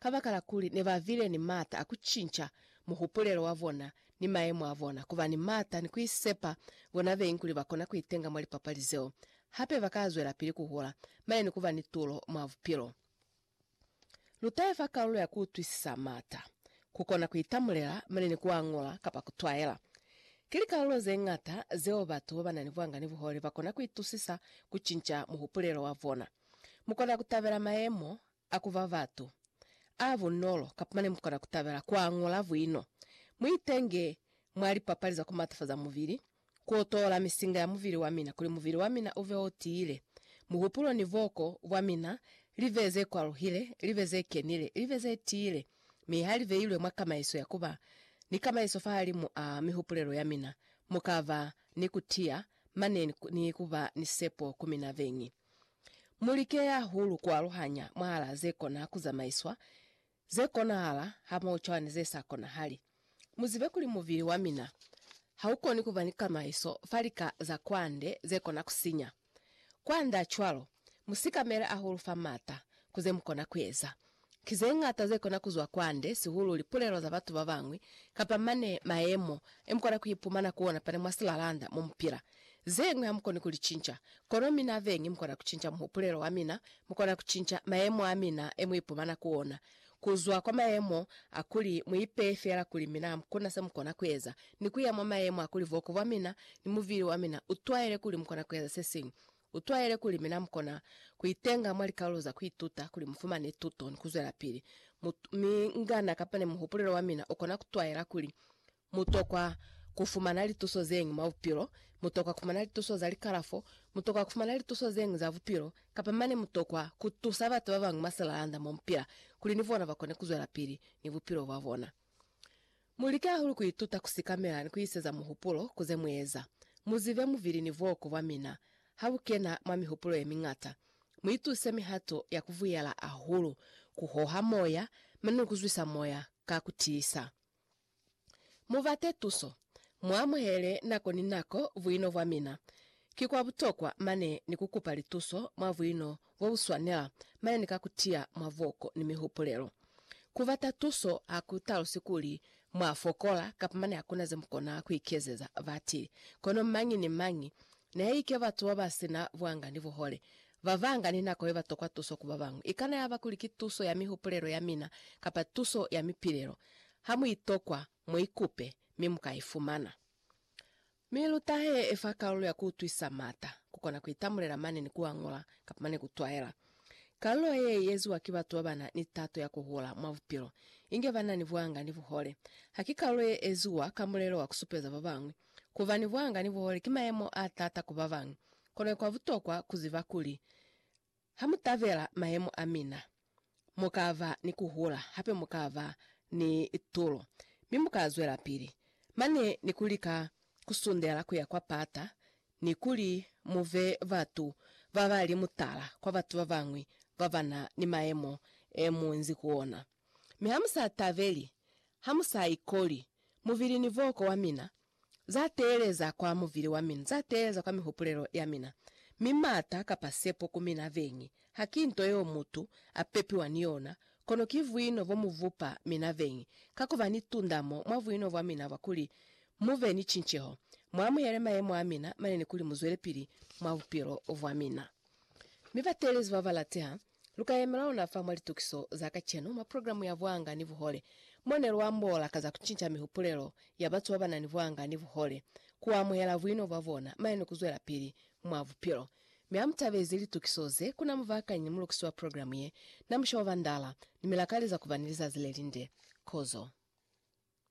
Kabakala kuli ne ba bile ni m'ata a ku cinca muhupulelo wa bona ni mayemo a bona, ku ba ni m'ata ni ku isepa bona beñi kuli ba kona ku itenga mwa lipapali zeo. Hape ba ka zwelapili ku hola mane ni ku ba ni tulo mwa bupilo. Lu tahe fa kalulo ya ku utwisisa m'ata, ku kona ku itamulela mane ni ku a ñola kapa ku twaela. Ki likalulo ze ñata zeo batu ba ba na ni buangani buhole ba kona ku itusisa ku cinca muhupulelo wa bona. Mu kona ku tabela mayemo A ku ba batu. A bunolo, kapa mane mukona ku tabela ku a ñola buino. Mu itenge mwa lipapali za ku matafaza mubili, ku otola misinga ya mubili wa mina kuli mubili wa mina u be o tiile, muhupulo ni boko bwa mina li be ze kwaluhile, li be ze kenile, li be ze tiile, mi ha li beilwe mwa kamaiso ya ku ba ni kamaiso fahalimu a mihupulelo ya mina, mu ka ba ni ku tiya mane ni ku ba ni sepo ku mina beñi. Mu like hahulu ku aluhanya mwahalaa ze kona ku zamaiswa, ze konahala hamoho cwani ze sa konahali. Mu zibe kuli mubili wa mina ha u koni ku ba ni kamaiso fa lika za kwande ze kona ku sinya. Kwandaa cwalo, mu sikamele hahulu fa m'ata ku ze mu kona ku eza, Ki ze ñata ze kona ku zwa kwande, sihulu lipulelo za batu ba bañwi, kapa mane mayemo e mu kona ku ipumana ku ona fani mwa silalanda mo mu pila. Ze ñwi ha mu koni ku li cinca. Kono mina beñi mu kona ku cinca muhupulelo wa mina, mu kona ku cinca mayemo a mina e mu ipumana ku ona, ku zwa kwa mayemo a kuli mu ipeye fela kuli mina ha ku na se mu kona ku eza, ni ku ya mwa mayemo a kuli boko bwa mina ni mubili wa mina u twaele kuli mu kona ku eza se siñwi. Utwaele kuli mina mukona kuitenga mwa likalulo za kuituta kuli mufumane tuto ni kuzwelapili. Mutu, mi ngana kapa ni muhupulelo wa mina ukona kutwaela kuli mutokwa kufumana lituso zeñwi mwa bupilo, mutokwa kufumana lituso za likalafo, mutokwa kufumana lituso zeñwi za bupilo, kapa mane mutokwa kutusa batu babañwi mwa silalanda momupila kuli ni bona bakone kuzwelapili ni bupilo bwabona. Mu like hahulu ku ituta ku sikamela ni ku iseza muhupulo ku ze mu eza. Mu zibe mubili ni bwoko bwa mina ha bu kena mwa mihupulo ye miñata. Mu ituse mihato ya ku vuyela hahulu ku hoha moya mane ni ku zwisa moya ka ku tiisa. Mu bate tuso Mu amuhele nako ni nako buino bwa mina. Ki kwa butokwa mane ni ku kupa lituso mwa buino bo bu swanela mane ni ka ku tiya mwa voko ni mihupulelo. Ku bata tuso ha ku talusi kuli mwa fokola kapa mane ha ku na ze mu kona ku ikezeza batili. Kono mañi ni mañi, nihaike batu ba ba si na buanga ni buhole, ba banga ni nako ye ba tokwa tuso ku ba bañwi. I kana ya ba kuli ki tuso ya mihupulelo ya mina kapa tuso ya mipilelo, ha mu i tokwa, Mu i kupe, mi mu ka i fumana. Mi lu tahe fa kalulo ya ku utwisa m'ata, ku kona ku itamulela mane ni ku añola, kapa mane ku twaela. Kalulo ye, i eziwa ki batu ba ba na ni tato ya ku hula mwa bupilo, inge ba na ni buanga ni buhole. Ha ki kalulo ye eziwa ka mulelo wa ku supeza ba bañwi. Ku ba ni buanga ni buhole ki mayemo a taata ku ba bañwi, kono kwa butokwa ku ziba kuli Ha mu tabela mayemo a mina, mu ka ba ni ku hula, hape mu ka ba ni tulo, mi mu ka zwelapili mane ni ku lika ku sundela ku ya kwa pata, ni kuli mu be batu ba ba li mutala kwa batu ba bañwi ba ba na ni mayemo e mu nzi ku ona. Mi ha mu sa tabeli, ha mu sa ikoli mubili ni boko wa mina, Za teeleza kwa muvili wa mina, za teeleza kwa mihupulelo ya mina, mi maata kapa sepo ku mina veñi ha ki nto yeo mutu a pepiwa ni yona, kono ki vuino bo mu vupa mina veñi, ka ku ba ni tundamo mwa vuino bwa mina bwa kuli mu be ni cinceho, mu amuhele mayemo a mina mane ni kuli mu zwelepili mwa bupilo bwa mina. Mi bateelezi ba ba lateha, Lu ka yemela ona fa mwa litukiso za kacenu mwa programu ya Bwanga ni Buhole, mo ne lu ambola ka za ku cinca mihupulelo ya batu ba ba na ni bwanga ni buhole, ku amuhela buino bwa bona mane ni ku zwelapili mwa bupilo. Mi ha mu tabezi litukiso ze, ku na mubakanyi ni mulukisi wa programu ye, na Musha wa Bandala, ni mi la kaleza ku ba ni lizazi le linde. Kozo.